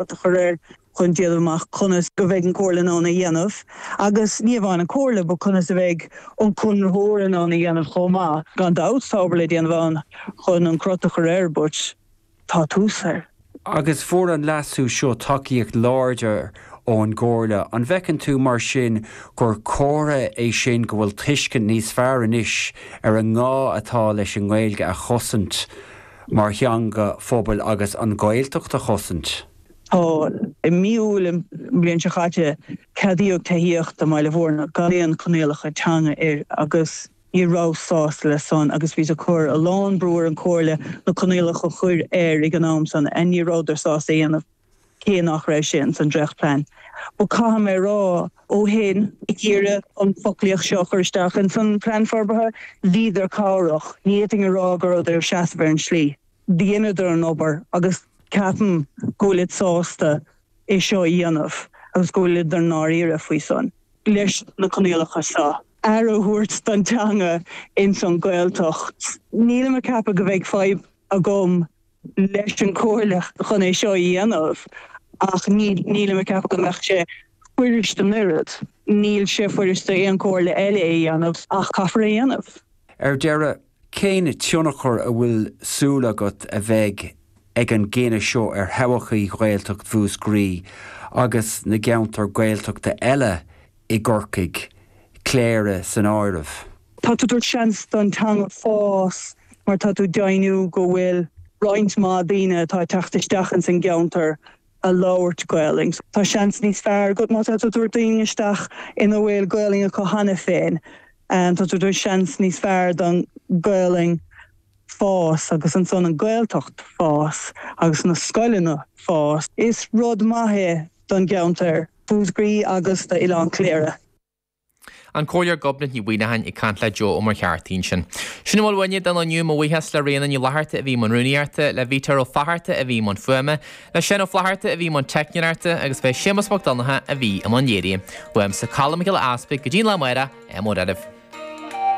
a chur air chun déanamh amach conas go bheidh an Comhairle in ann é a dhéanamh agus ní amháin an Comhairle but conas a bheidh an conraitheoir in ann é a dhéanamh chomh maith. Gan dabht tá obair le déanamh ann chun an crot a chur air but tá tús air. Agus fuair an leasú seo tacaíocht láidir ón gComhairle. An bhfeiceann tú mar sin gur comhartha é sin go bhfuil tuiscint níos fearr anois ar an ngá atá leis an nGaeilge a chosaint mar theanga phobail agus an Gaeltacht a chosaint. Tá i mí Iúil an bhliain seo chaite ceadaíodh tithíocht i mBaile Mhúirne gan aon choinníollacha teanga air agus ní rabhas sásta leis san agus bhíos ag cur a lán brú ar an chomhairle na coinníollacha a chur air ag an am san ach ní rabhadar sásta é a dhéanamh. cé nach raibh sé ins an dréacht plean but caithfidh mé a rá ó shin, ag iarraidh an foclaíocht seo a chur isteach ins an plean forbartha, bhíodar cabhrach, ní fhéadfainn a rá go rabhadar ag seasamh ar an slí, dheineadar an obair agus ceapaim go bhfuilid sásta é seo a dhéanamh agus go bhfuilid i ndáiríre faoi san. leis na coinníollacha seo, aire a thabhairt don teanga ins an Ghaeltacht. Nílim ag ceapadh go bheidh fadhb agam. leis an gcomhairle chun é seo a dhéanamh ach nílim ag ceapadh go mbeadh sé fuirist an oiread. Níl sé fuirist d'aon comhairle eile é a dhéanamh ach caithfear é a dhéanamh. Ar deireadh, cén tionchar a bhfuil súil agat a bheidh ag an gcinneadh seo ar thodhchaí Ghaeltacht Mhúscraí agus na gceantar Gaeltachta eile i gCorcaigh, Cléire san áireamh. Tá tú ag tabhairt seans don teanga fás mar tá tú ag deimhniú go bhfuil roinnt mhaith daoine atá ag teacht isteach ins an gceantar ag labhairt Gaolainn. Tá seans níos fearr agat má tá tú ag tabhairt daoine isteach ina bhfuil Gaolainn acu cheana féin. Tá tú ag tabhairt seans níos fearr don Gaolainn fás agus ansan an Gaeltacht fás agus na scoileanna fás. Is rud maith é don gceantar. Mhúscraí agus do Oileán Chléire. An Comhairleoir Gobnait Ní Mhuimhneacháin ag caint le Joe Ó Muircheartaigh ansin. Sin a bhfuil uainne don lá inniu, mo bhuíochas le Ríona Ní Fhlatharta a bhí i mbun rúnaíochta, le Vítear Ó Fátharta a bhí i mbun fuaime, le Séan Ó Flatharta a bhí i mbun teicneoireachta agus b'é Séamus Mac Donnacha a bhí i mbun léirithe. Uaimse Colm Mac Giolla Easpaig, go dtí an lá amárach, ádh mór oraibh.